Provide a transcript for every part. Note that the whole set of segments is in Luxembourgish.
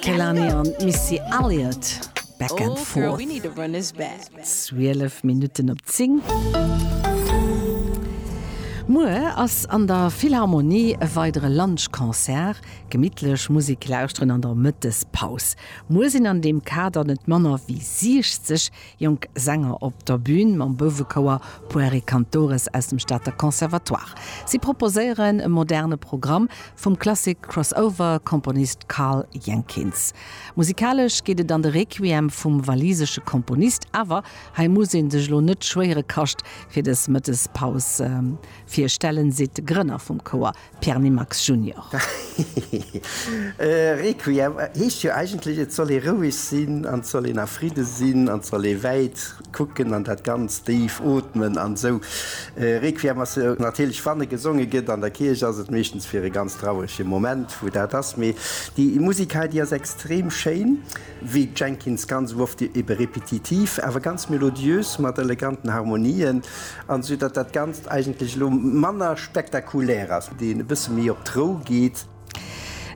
Kehlani an Missy Elliott, Back and Forth. 12 Minutten op 10. Muer ass an der Philharmonie e weidere Lunch-Concert. Gemittlech Musek lauschteren an der Mëttespaus. Muer sinn an deem Kader net manner wéi 60 Jonk Sänger op der Bün mam Bouwekouer Pueri Cantores aus dem Stater Conservatoire. Si proposéieren e moderne Programm vum Klassik-Crossover-Komponist Karl Jenkins. Musikalesch geet et an de Requiem vum walisesche Komponist, awer hei muss ee sech elo net schwéiere Kascht fir des Mëttes Paus virstellen, seet de Grënner vum Kouer Pierre Nimax Junior. Requiem heescht jo eigentlech, et soll ee roueg sinn an et soll een a Fridde sinn an et soll ee wäit kucken an dat Ganzt déif ootmen an esou. Requiem ass jo natierlech wann e gesonge gëtt an der Kierch, ass et meeschtens fir e ganz trauerege Moment, wou dat ass. Mee déi Musik hei, déi ass extrem schéin. Wéi d'Jenkins ganz oft ebe repetitiv, awer ganz melodiös mat eleganten Harmonien, an esou datt dat Ganzt eigentlech elo manner spektakulär ass, deen e bësse méi op d'Rou geet.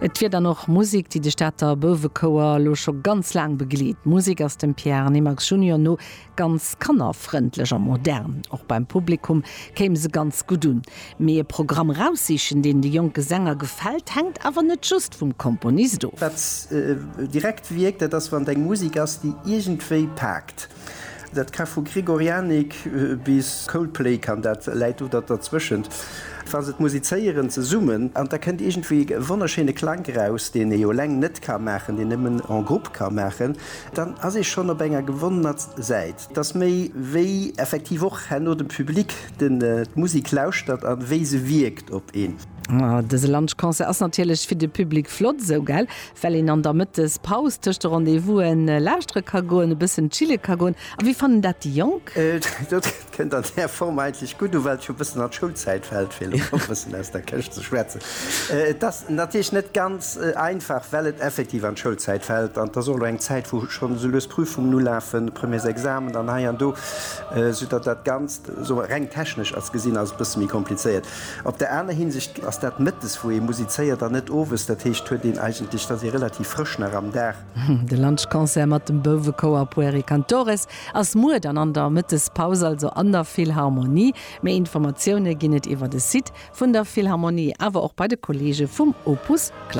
Et wier dann och Musek, déi de Stater Bouwechouer elo scho ganz laang begleet. D'Musek ass dem Pierre Nimax Junior no Ganz kannerfrëndlech a modern. Och beim Publikum kéim se ganz gutt un. Mee e Programm eraussichen, deen de jonke Sänger gefält, hänkt awer net just vum Komponist of. Wat direkt wierkt, dat ass, wann et eng Musek ass, déi iergendwéi paakt. Dat ka vu Gregorianik bis Coldplay kann dat, läit do da dertwëschent, wa se et musizéieren zesummen. An da kënnt iergendwéi e wonnerschéine Klank eraus, deen ee jo eleng net ka maachen, deen ee nëmmen en groupe ka maachen. Dann ass ee schonn op enger gewonnener Säit, dass méi wéi effektiv och herno de Public d'Musik lauschtert a wéi se wierkt op een. Dëse Lunchconcert ass natierlech fir de Public flott esou, gell? Well een an der Mëttespaus tëscht de Rendez-vous'en lauschtere ka goen, e bëssen chille ka goen. A wéi fannen dat déi Jonk? Kënnt an där Form eigentlech gutt u, well et scho e bëssen an d'Schoulzäit fält, fir elo e bëssen aus der Këscht ze schwätzen. Et ass natierlech net ganz einfach, well et effektiv an d'Schoulzäit fält an et ass och elo eng Zäit, wou schonn esou lues Prüfungen ulafen, Premiers Examen an hei an do, esou datt dat Ganzt, soe mer, reng technesch ass gesinn, ass et e bësse méi komplizéiert. Op der aner Hinsicht ass dat mëttes, wou ee musizéiert an net owes, dat heescht, huet een eigentlech, et ass ee relativ frësch nach am Dag. De Lunchconcert mat dem Bouwekouer Pueri Cantores ass muer dann an der Mëttespaus, also an der Philharmonie. Méi Informatioune ginn et iwwer de Site vun der Philharmonie, awer och bei de Kolleege vum Opus Klassik.